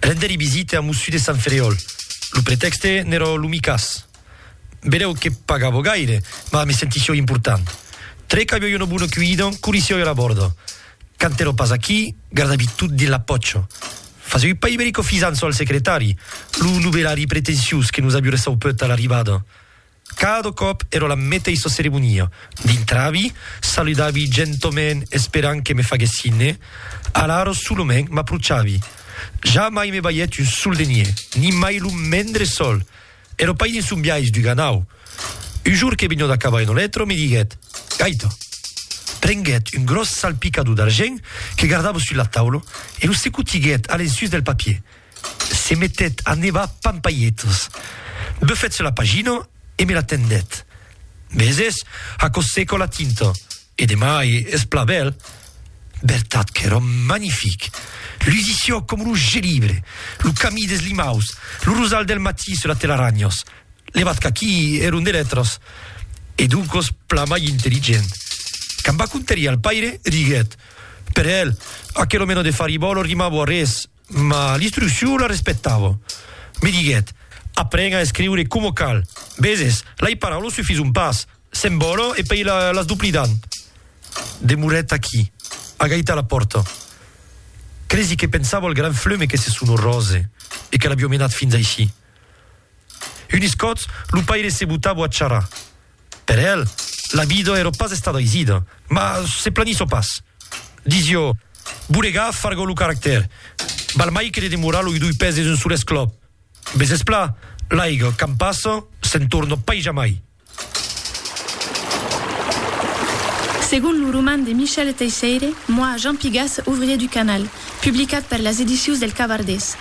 Render-li visite a Mossu de Sant Ferriòl. Lo pretèxte n'èra lo micàs. Vedèu que pagavo gaire, mas me sentissiò important. Tre qu'aviò una bona cuida, corrissiò era bòrda. Quand èra pas aquí, gardavi tot dins la pòcha. Fasèu pas iberico fisanço al secretari, lo novelari pretenciós que nos aburressèu peu tà l'arribada. Cada còp èra la meteissa ceremonia, dintravi, saludavi gentament esperant que me faguèsse signe, alara solament m'aprochavi. Ja mai me balhèt un sol de nie, ni mai lo mendre sol! Èra pas dins son biais d'uganau. Un jorn que venio d'acabar una letra, me diguèt, Gaita! Prenguèt un gròs salpicador d'argent que gardava sus la taula e lo secotiguèt a l'ensús del papier. se metèt a nevar pampalhetas. Bufèt se la pagina e me la tendèt. Meses, aquò seca la tinta, e demai es plan bèl. Vertat qu'èra magnific! Lusiciò coma lo gelibre, lo camí des limaus, lo rosal del matí sus las telaranhas. Levat qu'aquí èron de letras, e doncas plan mai intelligent. Quand va contar-i al paire, diguèt, Per el, aquela mena de faribòla rimava a res. Ma l'instruccion la respectava. Me diguèt, Apren a escriure coma cal. Veses, lai paraulas sufison pas. Se'n vòla e pei las doplidan. Demorèt aquí, agait a la pòrta. Cresi que pensava al gran fleume que se son orrose e que l'avió menat fins aicí. Unes còps, lo paire se botava a charrar. Per el, la vida èra pas estada aisida, mas se planissò pas. Disió, Boregar fargó lo caractèr. Val mai que de demorar loi doi pès des un sol esclop. Bes espla, l'aiga, quand passa, se'n torna pas jamai. Segon lo roman de Michel Teisseire, Moi, Jean Pigas, ouvrier du canal, publicat per las edicius del Cavardés.